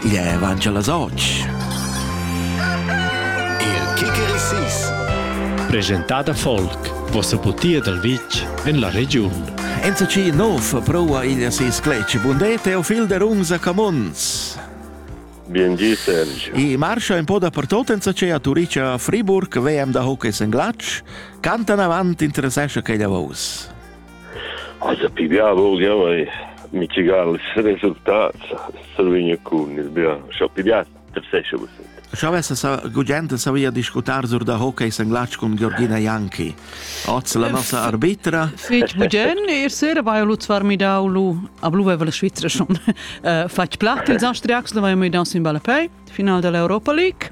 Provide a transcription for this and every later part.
Ie van già las och. Il Kikerisis. Presentada folk. Vossa butia dal vitg en la regiun. NCC Nov prova il si scletg. Bunde Teofil de Runza Camons. Bien di, Sergio. I marcia un po' dappertut in a Turicia a Friburg, VM da hockey in Glatsch, cantan avant interessesce che la voce. Also pigliava vogliamo e mitigar ils resultats survegna cun il bia scha piglias tersescha vos Scha avessa gudient savia discutar sur da hockey senglatsch cun Georgina Janki. Oz la nossa arbitra. Fetg bugen, er sera vai lu zwar mi dau lu a blu veva la Svizra schon. Fatg plat ils Austriacs, la vai mi dau sin balapei, final dell'Europa League.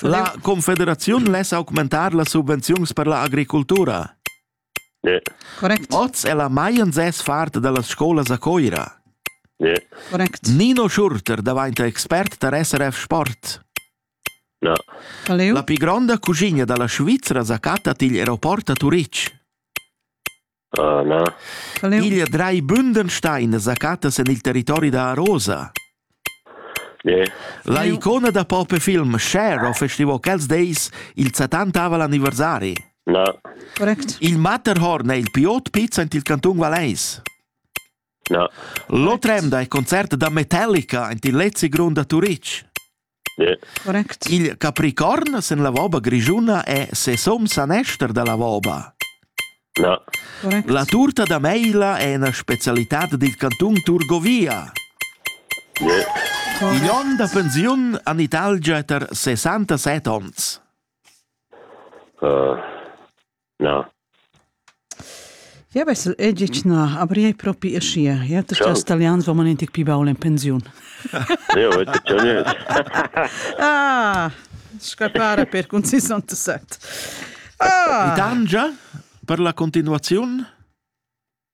La confederaziun less augmentar las subvenziuns per la agricultura. Correct. Oz è la Maien sez fart da las scolas a Coira. Correct. Nino Schurter daventa expert tar SRF Sport. No. La pli gronda cuschina da la Svizra sa chatta tigl aeroport a Turitg. Na. Igl drei Bündenstein zacattas en il territori da Arosa. Ne. La icona da pop e film Cher ho festivo quels deis il 70 anniversari. Na. Correct. Il Matterhorn è il piot pizza in il canton Valeis. Na. Lo tremda è concert da Metallica in il Lezzi Grund a Turic. Correct. Il capricorn sen la voba grischuna è ses om sanester da la voba. No. Correct. La turta da meila è una specialità dil canton Turgovia. Yeah. Igl onn da pensiun han Italgia ter 67 onns. Uh, Na. Ja vessel ei gitg na, aber ei propi aschia. Ja, tu stess talians va man in tic pi baul en pensiun. Ja, vete tschonus. Ah, scappare per cun 67. Ah, Dangia per la continuaziun?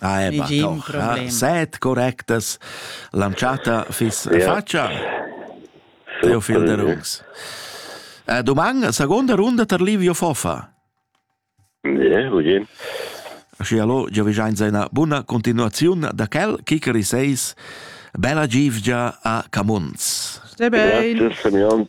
Ah, ma doch, set correctas. L'anchata fiss fatscha. Eu fil da rungs. Eh, doman, seconda runda tar Livio Fofa. Yeah, legin. Aschi allo, già vi giain seina buna continuaziun da quel kicker i seis bella givgia a Camuns. Stai bein. Grazie, Simeon.